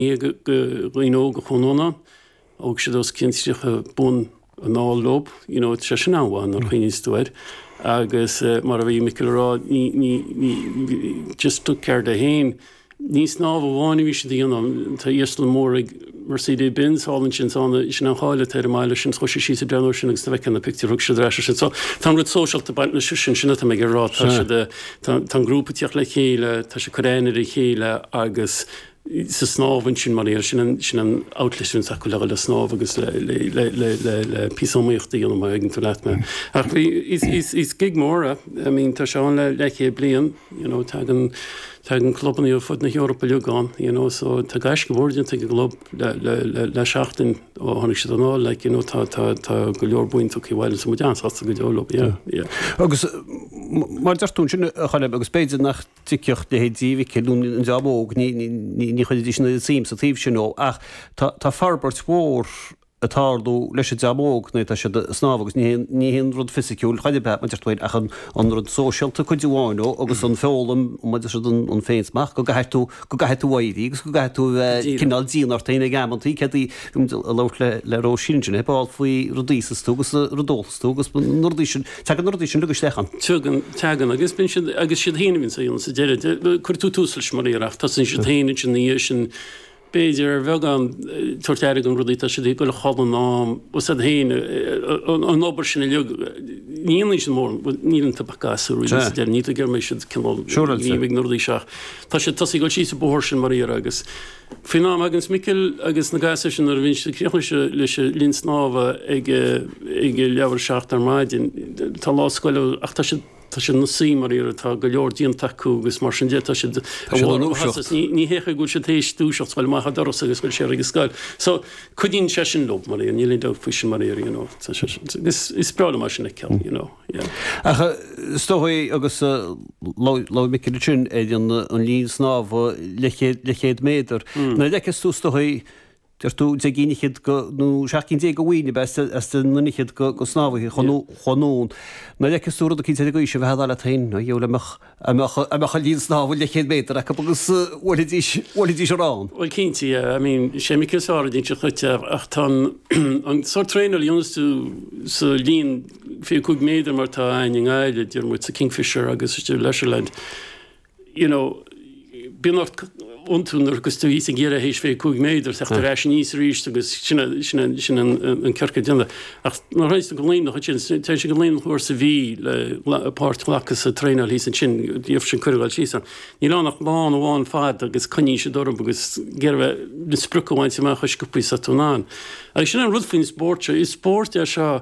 Naoi gcinn de dhaoine óga, a Choilm, thóg siad os cionn 30 bonn anall leo, you know, sé sin an-éacht nuair a chuimhníos tú air. Agus mar a bhí Micil ag rá, ní, ní, ní, just took care dó fhéin. Ní snámh amháin a bhí siad a dhéanamh, tá iarsmalann mór ag Mercedes Benz thall ansin, so ann, sin an cháil atá ar an mbaile sin, so chuaigh siad síos ag breathnú air sin agus tá tú ag feiceáil na pictiúir a thug siad ar ais ansin. So tá an rud sóisialta ag baint leis sin, sin atá mé ag rá, tá siad, tá an grúpa ag tíocht le chéile, tá siad ag cur aithne ar a chéile agus, sa snámh ansin mar a déarfá. Sin an outlet sin atá acu le dhul snámh agus le píosa iomaíochta a dhéanamh, má thuigeann tú leat mé. Ach bhí, is gig mór é. I mean, tá sé ann le leathchéad bliain. You know, tagann, tagann clubanna ar fud na hEorpa uilig ann, you know, so tá gaisce mhór déanta ag an gclub le seachtain ó tháinig siad anall, like, you know, tá, tá, tá go leor bainte amach acu i mbliana. Muid an-sásta go deo leo, yeah, yeah. Agus mar a deir tú ansin, a Choilm, agus b'fhéidir nach dtuigfeadh leithéidí Mhicil nó an dream óg, ní chuirfidís an oiread suim sa taobh sin dhó. Ach tá forbairt mhór ag tarlú leis an dream óg, nuair atá siad ag snámh agus ní hé an rud fisiciúil, ar chor ar bith, mar a deir tú féin, ach an rud sóisialta cuid mhaith dhó agus an fhoghlaim, mar a deir siad, an féinsmacht, go gcaithfidh tú, go gcaithfidh tú éirí agus go gcaithfidh tú a bheith cineál dian ort féin ag amantaí, cé go raibh mé ag labhairt le Róisín ansin, ar ball faoi rudaí sóisialta agus rudaí. agus bíonn na rudaí sin, teagann na rudaí sin agus isteach ann. Teagann, teagann agus bíonn siad, agus is iad féin a bhíonns á dhéanamh sa deireadh. Cuireann tú tús leis mar a déarfá, tosaíonn siad féin ansin ina dhiaidh sin b'fhéidir ar bheagán tabhairt aire do na rudaí tá siad ag goil a chodladh in am, agus iad féin an obair sin a leag níon sin mór níl an tabacá sa ruí dear ní gur mé siad cináil ní ag na rudaí seach. Tá sé tosaí ag goil síos an bóthar sin mar a déarfá agus Faoin am a thaganns Micil agus na gasúir sin ar Bhinse, tá siad críochnaithe leis an linn snámha ag a leath i ndiaidh 7 ar maidin, tá lá scoile ach tá siad ina suí mar a déarfá tá go leor déanta acu agus mar sin de tá siad i lár a maitheasa. Ní hé an chaoi go bhfuil siad tar éis dúiseacht, dul amach an doras agus go bhfuil siad ag an scoil. So, cuidíonn sé sin leo mar a déarfá, níl aon dabht faoi sin mar a déarfá, you know. Is breá liom é sin a fheiceáil, you know. Ach is dóigh, agus labhair Micil ansin ar an linn snámha leathchéad méadar, nuair a fheiceas tú, is dóigh, deir tú, deich gcinn fichead nó seacht gcinn déag de bhoinn a bheith ag an nduine fhichead snámhaithe Cúla, nuair a fheiceas tú rud eicínt ar an gcaoi sin, bheifeá ag rá leat féin, a Dhia ó, dá mbeadh. dá mbeadh an linn snámha leathchéad méadar acu agus bhuailfidís ar ann. Bhuel cinnte, yeah, I mean, sé Micil an saineolaí ansin chuige ach tá an sórt traenáil a dhéanas tú sa linn fiche a cúig méadar mar atá a'ainn i nGaillimh, deir muid sa Kingfisher agus istigh i Leisureland, you know, bíonn ort iontú nuair agus tú thíos ag deireadh th'éis fiche cúig méadar, theacht ar ais aníos arís agus sin a, sin a, sin an, an, an ciorcal déanta. Ach nuair a théas tú go Luimneach ansin, s- téann sé go Luimneach uair sa mhí le gla- páirt ghlacadh sa traenáil thíos ansin, faigheann sé cuireadh dul síos ann. Níl ann ach lána amháin ar fad agus coinníonn siad orm agus ag iarraidh bheith na sprioc a bhaint amach chomh sciobtha is atá tú in ann. Agus sin an rud faoin spórt seo, is spórt é seo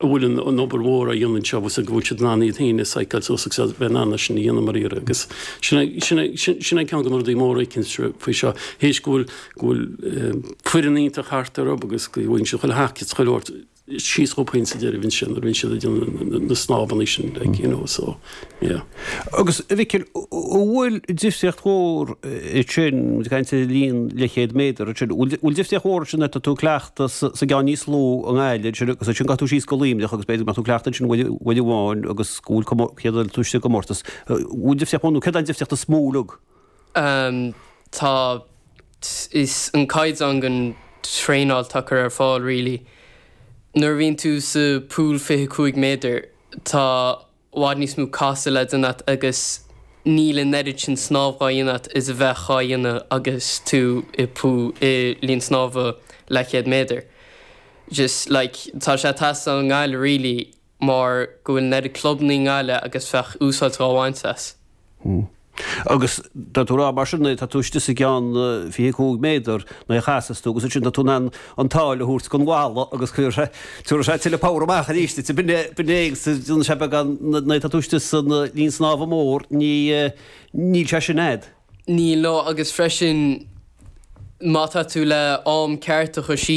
a bhfuil an obair mhór á dhéanamh anseo, agus go bhfuil siad in ann iad féin a psycheáil suas agus a bheith in ann é sin a dhéanamh dháiríre. Agus sin é ceann de na rudaí móra a fheicimse faoi seo, théis go bhfuil foireann iontach thart orthu agus go bhfaigheann siad chuile thaca is chuile shórt síos chucu féin sa deireadh ansin nuair a bhíonn siad ag déanamh na snámhanna sin, like, you know, so. Agus, a Mhicil, an bhfuil difríocht mhór ansin, ag caint ar linn leathchéad méadar ansin, an bhfuil difríocht mhór ansin tá tú ag cleachtadh sa gceann níos lú i nGaillimh ansin agus ansin gabhfaidh tú síos go Luimneach agus b'fhéidir nach tú cleachtadh ansin uair amháin agus go bhfuil cé go bhfuil tú istigh i gcomórtas, an bhfuil difríocht mhór nó céard an difríocht is mó uilig? Ehm, tá, is an caighdeán den traenáil atá curtha ar fáil really. Nuair a bhíonn tú sa pool fiche cúig méadar, tá i bhfad níos mó casadh le déanamh agat agus níl an oiread sin snámh dhá dhéanamh agat is a bheadh dhá dhéanamh agus tú i linn snámha leathchéad méadar. Just, like, tá sé ag teastáil i nGaillimh really mar go bhfuil an oiread clubanna i nGaillimh agus bheadh úsáid dhá bhaint as. Agus tá tú ag rá mar sin é, tá tú istigh sa gceann fiche cúig méadar, nuair a chasas tú, agus ansin tá tú in ann an tsáil a thabhairt don bhalla agus tabharfaidh sé, tabharfaidh sé tuilleadh power amach arís duit. B'in é, b'in é, agus déanann sé beagán, nuair atá tú istigh san linn snámha mór, ní, níl sé sin a'd. Níl, no, agus freisin má tá tú le am ceart a chur síos,